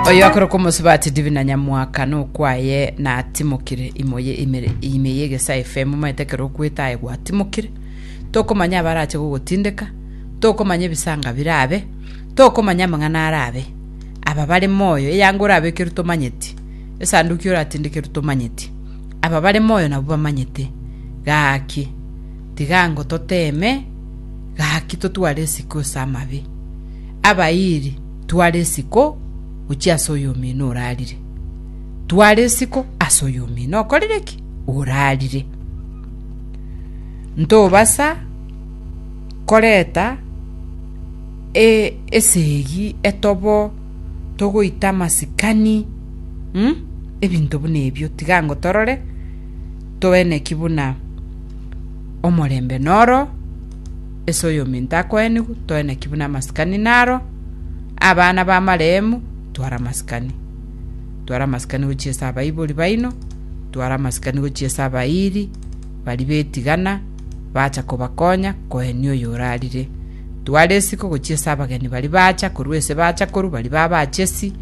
oyo akorokwa omosubati divina nyamwaka nokwaye natimokire imo ye imere ime ye egesae fm omanyete ekero okwete aye gwatimokire tokomanya abarache gogotindeka tokomanya ebisanga birabe tokomanya amang'ana arabe aba bare moyo eyango orabekerwe tomanyeti esanduki oratindekerwe tomanyeti aba bare moyo nabwo bamanyete gaki tiga ngo toteme Gaki totware isiko ase amabe, abairi, twara isiko gochia ase oyomino orarire. Twara isiko ase oyomino okorire ki? Orarire. Ntobasa koreta e- esegi etobo togoita amasikani mm? ebinto buna ebio tiga ango torore toene ki buna Omorembe noro ase oyominto akoenigwe, toe naki buna amasikani naro, abana b'amaremu, twara amasikani. Twara amasikani gochia ase abaibori baino, twara amasikani gochia ase abairi baria betigana, bacha kobakonya koenia oyo orarire. Twara esiko gochia ase abageni baria bacha korwa ase bachakoru baria babachesi,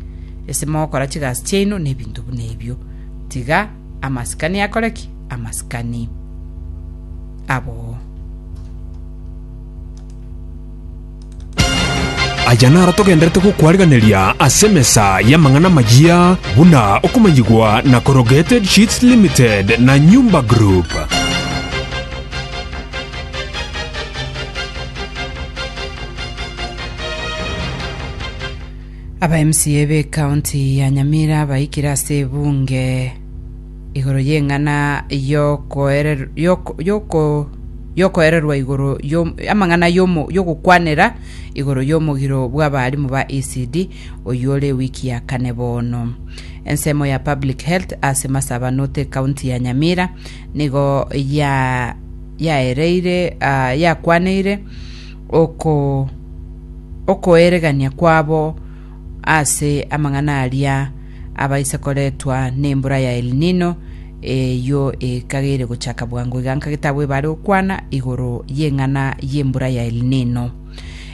ase mogokora chigasi chiaino na ebinto buna ebio. Tiga Amasikani akore ki? Amasikani aboo. Aya naro togenderete gokwareganeria ase emesa y'amang'ana amayia buna okomanyigwa na Corrugated Sheets Limited na Nyumba Group. Aba MCA be county ya Nyamira baikire ase ebunge igoro y'eng'ana y'okoerer- y'oko- y'oko- y'okoererwa igoro y'om- amang'ana y'omo- y'ogokwanera igoro y'omogiro bw'abaalimu ba ECD oyore ewiki ya kane bono. Ensemo ya public health ase masabanote county ya Nyamira nigo ya yaereire ah, yakwaneire okoeregania kwabo ase amang'ana aria abaise koretwa nembura ya El Nino, eyio ekageire gochaka bwango iga nka getabu ebare gokwana igoro y'eng'ana y'embura ya El Nino.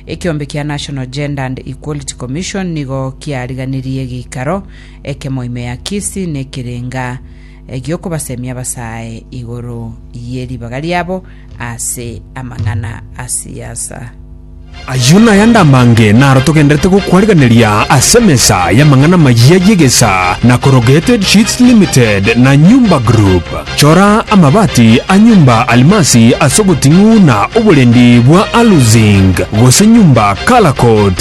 Ekeombe kia National Gender and Equality Commission nigo kiariganirie geikaro ekemo ime ya Kisii nekerenga egi'okobasemia abasae igoro ye ribaga riabo ase amang'ana a siasa. Ayio naye ande amange naro togenderete gokwarigereria ase emesa y'amang'ana amayia y'egesaa na Corrugated Sheets Limited na Nyumba Group. Chora amabati a Nyumba Almasi ase oboting'u na oborendi bwa Alu-Zinc gose Nyumba Color Coat.